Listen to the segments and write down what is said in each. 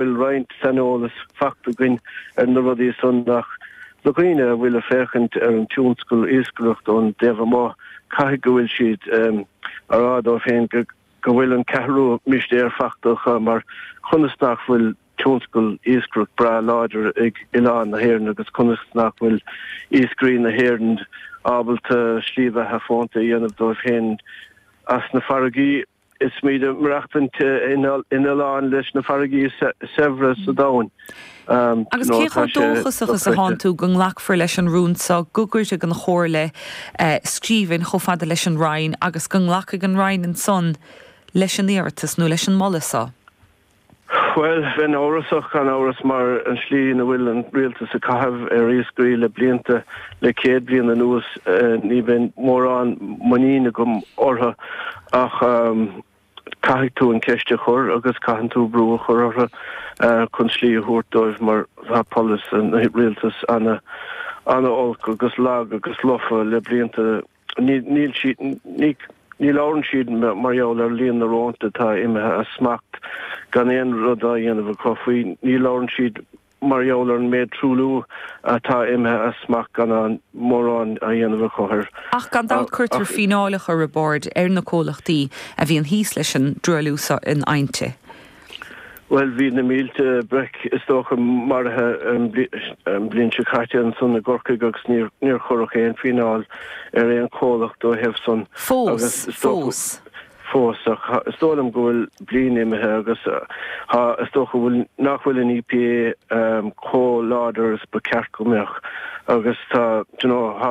bhuel roinnt saineolas fachta againn ar na rudaí san ach do dhaoine a bhfuil ag féachaint ar an tionscal iascaireacht ón dtaobh amuigh caithfidh go bhfuil siad a rá dóibh féin go go bhfuil an ceathrú mistéir fachta acu mar conas nach bhfuil tionscal iascaireacht breá láidir ag Oileán na hÉireann agus conas nach bhfuil iascairí na hÉireann ábalta slí bheatha fónta a dhéanamh dóibh féin as na farraigí Is muid ag maireachtaint in oileán leis na farraigí is saibhre sa domhain. Agus cé chomh dóchasach is atánn tú go nglacfar leis an rún seo go gcuirfidh an Chomhairle scríbhinn chomh fada leis an Roinn agus go nglacfaidh an Roinn ansan leis an iarratas nó leis an moladh seo? Bhuel, bheinn amhrasach gan amhras mar an slí ina bhfuil an rialtas ag caitheamh leis iascairí le blianta, le céad bliain anuas, ní bheadh mórán muiníne agam orthu ach caithfidh tú an ceist a chur agus caitheann tú brú a chur orthu chun slí a thabhairt dóibh mar tá polasaí an rialtas ana olc agus lag agus lofa le blianta. Ní labhrann siad mar gheall ar líon na rónta atá imithe as smacht gan aon rud á dhéanamh acu faoi. Ní labhrann siad mar gheall ar an méid truailliú atá imithe as smacht gan mórán á dhéanamh acu air. Ach gan dabht cuirtear fíneáileacha Roibeárd ar na comhlachtaí a bhíonn thíos leis an dtruailliú san in áiteanna. Bhuel, bhí na mílte breic, is dócha, maraithe an bhliain seo caite ansan i gCorcaigh agus níor cuireadh aon fíneáil ar aon chomhlacht dá thaobh san. Fós, fós. Fós, ach is dóigh liom go bhfuil bliain imithe agus is dócha go bhfuil, nach bhfuil an EPA chomh láidir is ba ceart go mbeadh agus tá, d'you know, tá,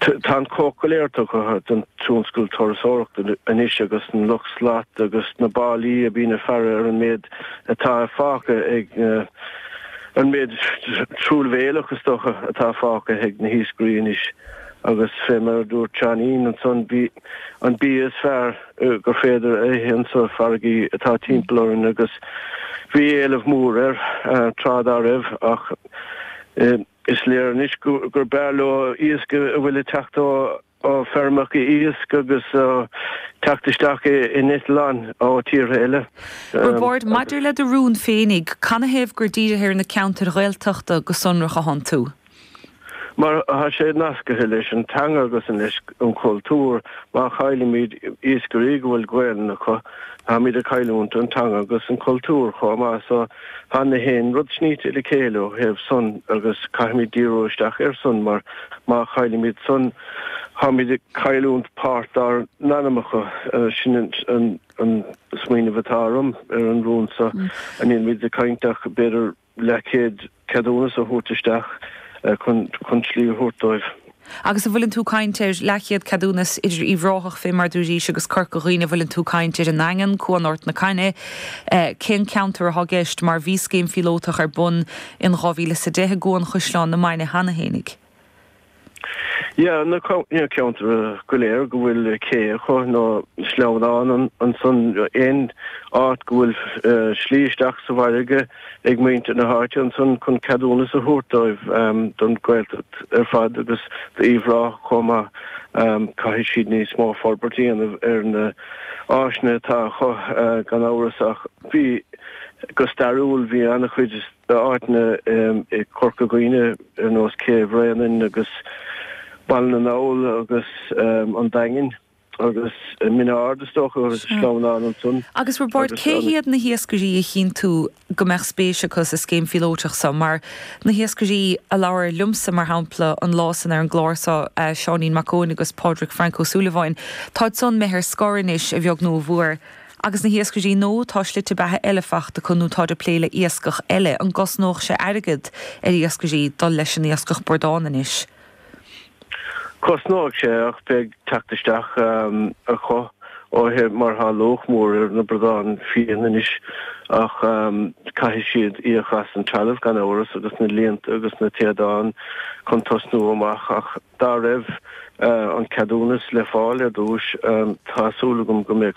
Tá an cuóta go léir tugtha don tionscal turasóireachta anois agus an lucht slat agus na báillí a bhíonn ag faire ar an méid atá fágtha ag na, an méid truamhéileach is dócha atá fágtha ag na hiascairí anois agus fé mar a dúirt Seáinín ansan bíonn an bia is fearr gur féidir a ithe ansa farraigí atá timpeall orainn agus bhí éileamh mór air tráth dá raibh ach Is léir anois gur b'fhearr leo iasc a bhfuil ag teacht ó feirmeacha iasc agus ag teacht isteach in eitleáin ó tíortha eile. Roibeárd, Maidir le do rún féinig, canathaobh gur dírís ar na ceantair Ghaeltachta go sonrach ansan tú? Mar tá sé nascaithe leis an teanga agus leis an chultúr. Má chaillimid iascairí go bhfuil Gaolainn acu, táimid ag cailliúint an teanga agus an chultúr chomh maith. Tá na haon rud sníte le chéile ó thaobh san agus caithfimid díriú isteach ar san mar má chaillimid san táimid ag cailliúnt páirt dár n-anamacha. Sin an smaoineamh atá orm ar an rún so. Nílimid ag caint ach b'fhéidir leathchéad ceadúnas a thabhairt isteach chun slí a thabhairt dóibh. Agus an bhfuileann tú ag caint ar leathchéad ceadúnas idir Uíbh Ráthach, fé mar a dúraís agus Corca Dhuibhne an bhfuileann tú ag caint ar an nDaingean, Cuan Ard na Caithne cén ceantar athá i gceist mar bhí scéim phíolótach ar bun in dhá mhíle is a deich i gCuan Chaisleán na Mainge cheana fhéinig. Yeah na ceantair go léir go bhfuil cé acu nó sleamhnán ansan aon áit go bhfuil slí isteach sa bhfarraige, ag muintir na háite ansan chun ceadúnas a thabhairt dóibh don Ghaeltacht ar fad agus d'Uíbh Ráthach chomh maith. Caithfidh siad níos mó forbairt a dhéanamh ar na áiseanna atá acu gan amhras ach bhí, go stairiúil, bhí an-chuid áiteanna i gCorca Dhuibhne ar nós Cé Bhréanainn agus Baile na nGall agus an Daingean. Agus Min Aird is dócha, agus sleamhnán ansan. Agus Roibeárd, cé hiad na hiascairí a chíonn tú go mbeadh spéis acu sa scéim phíolóiteach so? Mar, na hiascairí a labhair liomsa, mar shampla, an lá san ar an gclár so, Seáinín Mac Eoin agus Pádraig Frank Ó Súilleabháin, táid san imithe ar scor anois, a bheag nó a mhuar. Agus na hiascairí, nó tá slite beatha eile fachta acu nó táid ag plé le iascach eile. An gcosnódh sé airgead ar iascairí dul leis an iascach bradán anois? Cosnóidh sé ach beidh teacht isteach acu uaithi mar thá luach mór ar na bradáin fiain anois ach caithfidh siad íoc as an trealamh gan amhras agus na líonta agus na téadáin chun tosnú amach ach dá raibh an ceadúnas le fáil ar dtúis tá súil agam go mbeadh